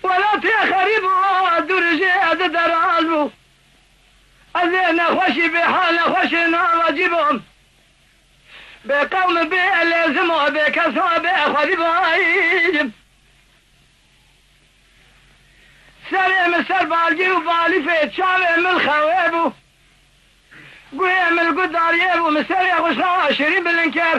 Welatê xerîb û dûrijê edi deraz bû. Ez ê nexweşî bê hal nexweşê navacî bom. Bê qewm û bê lêzim û bê kes û bê xwedî bajim. Serê min ser balgê û balîfê çavê min xewê bû. Guhê min li guh dariyê bû, min serê xwe ji xwe şirîn bilind kir.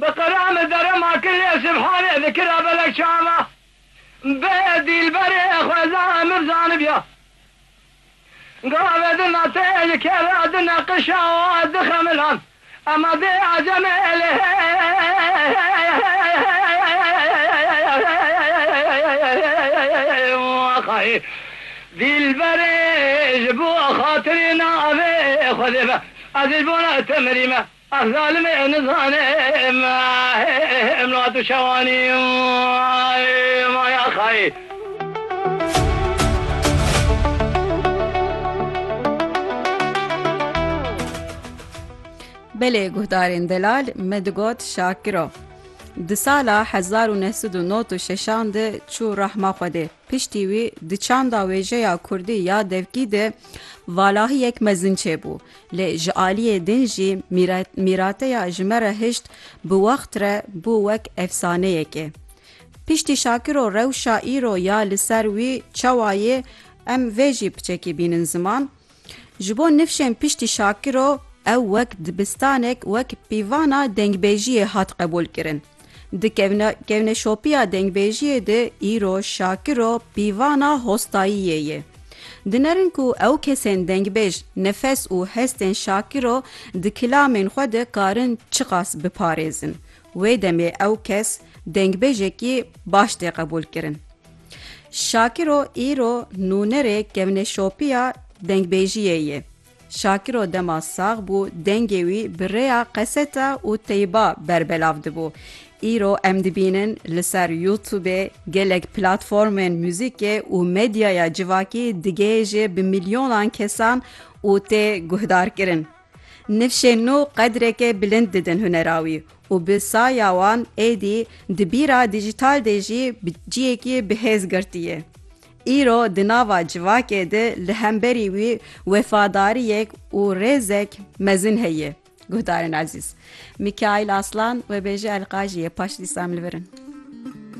Bi qira min derema kirê Sibhanê di kira belek çava bê dîlberê xweza min zanibiya gavê di nate ji kera di neqişa wan di xemilan ema dê aceme lê xayê dîlberê ji bo xatirê navê xwedê be ez ji bo te mirîme. Ev zalim ê nizane em niha tu şewanî ma ya xayê. Belê guhdarên delal me digot Şakiro di sala hezar û neh sed û not û şeşan de çû rahma Xwedê. Piştî wî di çanda wêjeya Kurdî ya devkî de valahiyek mezin çêbû. Lê ji aliyê din jî mîrateya ji me re hişt bi wext re bû wek efsaneyekê. Piştî Şakiro rewşa îro ya li ser wî çawa yê em vê jî piçekî bînin ziman. Ji bo nifşên piştî Şakiro ew wek dibistanek wek pîvana dengbêjiyê hat qebûl kirin. Di kevneşopiya dengbêjiyê de îro Şakiro pîvana hostayiyê ye. Dinerin ku ew kesên dengbêj nefes û hestên Şakiro di kilamên xwe de karin çiqas biparêzin. Wê demê ew kes dengbêjekî baş tê qebûlkirin. Şakiro îro nûnerê kevneşopiya dengbêjiyê ye. Şakiro dema sax bû dengê wî bi rêya qeseta û teyba berbelav dibû. Îro em dibînin li ser Youtubê gelek platformên muzîkê û medyaya civakî digihêje bi milyonan kesan û tê guhdarkirin. Nifşên nû qedreke bilind didin hunera wî û bi saya wan êdî di bîra dijîtal de jî bi ciyekî bihêz girtî ye. Îro di nava civakê de li hemberî wî wefadariyek û rêzek mezin heye. Guhdarên ezîz. Mikaîl Aslan, webêje Elqajî ye. Paşlî Sam li vir in.